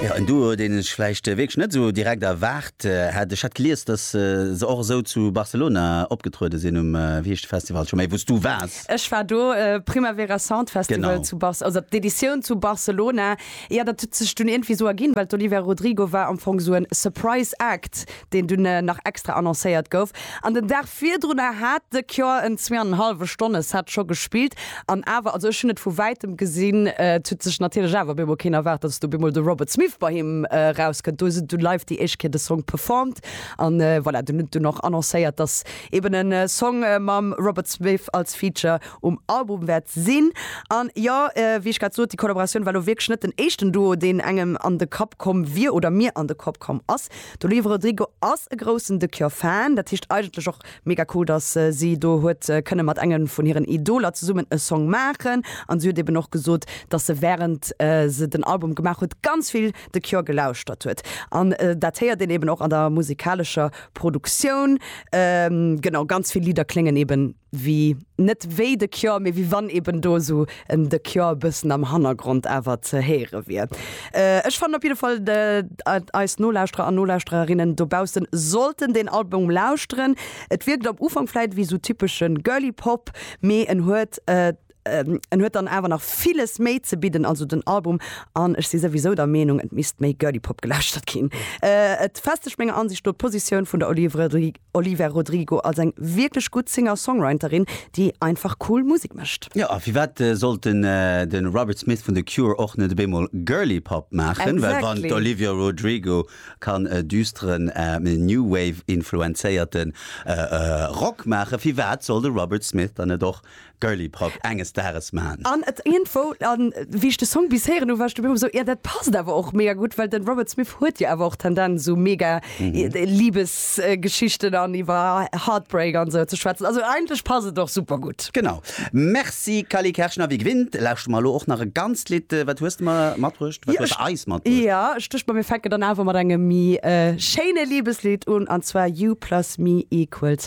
Jo, en Duo, deen ech vläicht wierklech net esou direkt erwaart hätt. Ech hat gelies, datt se och esou zu Barcelona opgetruede sinn, um, wéi heescht de Festival scho méi, wou s du waars? Ech war do, Primavera Sound Festival Genau. zu Barce-, also d'Editioun zu Barcelona. Jo, dat huet sech dunn iergendwéi esou erginn, well d'Olivia Rodrigo war am Fong esou en Surprise Act deen dunn nach extra annoncéiert gouf. An den Dag virdrunner hat The Cure en zwee an en hallwe Stonne Set scho gespillt. An awer, also ech hunn et vu wäitem gesinn, et huet sech natierlech awer op eemol keen erwaart, datt op eemol de Robert Smith bei him erauskënnt. Do huet en dunn live déi éischt Kéier de Song performed. An voilà, dunn hunn dunn och annoncéiert, datt eben e Song mam Robert Smith als Feature um Album wäert sinn. An jo, wéi ech grad sot, déi Collaboratioun war elo wierklech net den éischten Duo, deen engem an de Kapp komm wier oder mir an de Kapp komm ass. D'Olivia Rodrigo ass e groussen The Cure Fan, dat heescht eigentlech och mega cool, dass si do huet kënne mat engem vun hiren Idoler zesummen e Song maachen. An si huet eben och gesot, dass se wärend se den Album gemaach huet ganz vill The Cure gelauschtert huet. An dat héiert een eben och an der musikalescher Produktioun. Genau, ganz vill Lidder kléngen eben wéi net wéi The Cure, mee wéi wann eben do esou en The Cure e bëssen am Hannergrond awer ze héiere wier. Ech fannen op jidde Fall, datt eis Nolauschterer an Nolauschtererinnen dobaussen sollten deen Album lauschteren. Et wierkt am Ufank vläit wéi esou typesche Girly Pop, mee en huet ähm, en huet dann awer nach villes méi ze bidden, also den Album an ech si souwisou der Meenung, et misst méi Girly Pop gelauschtert ginn. Äh, et festegt menger Ansicht no d'Positioun vun der Olivia Rodrigo als eng wierklech gutt Singer-Songwriterin, déi einfach cool Musek mécht. Jo, a firwat sollt den de Robert Smith vun The Cure och net op eemol Girly Pop maachen? Well wann Exactly. d'Olivia Rodrigo kann e düsteren, ähm, New Wave-influenzéierten äh, äh, Rock maachen, firwat soll de Robert Smith dann net och Girly Prog enges Dages maan. An et iergendwo, an wéi ech de Song bis héieren hu war ech dobäi hu mer esou, jo dat passt awer och mega gutt, well den Robert Smith huet jo awer och Tendenz esou mega Liebesgeschichten an iwwer Heartbreak an esou ze schwätzen. Also eigentlech passt et och super gutt. Genau. Merci Cally Kerschner. Wie gewinnt lauschte mer elo och nach e ganzt Lidd. Wat hues de mer matbruecht? Wat hues de eis matbruecht? Jo ech duecht mer mir fänken dann awer mat engem méi schéine Liebeslidd un, an zwar You plus me equals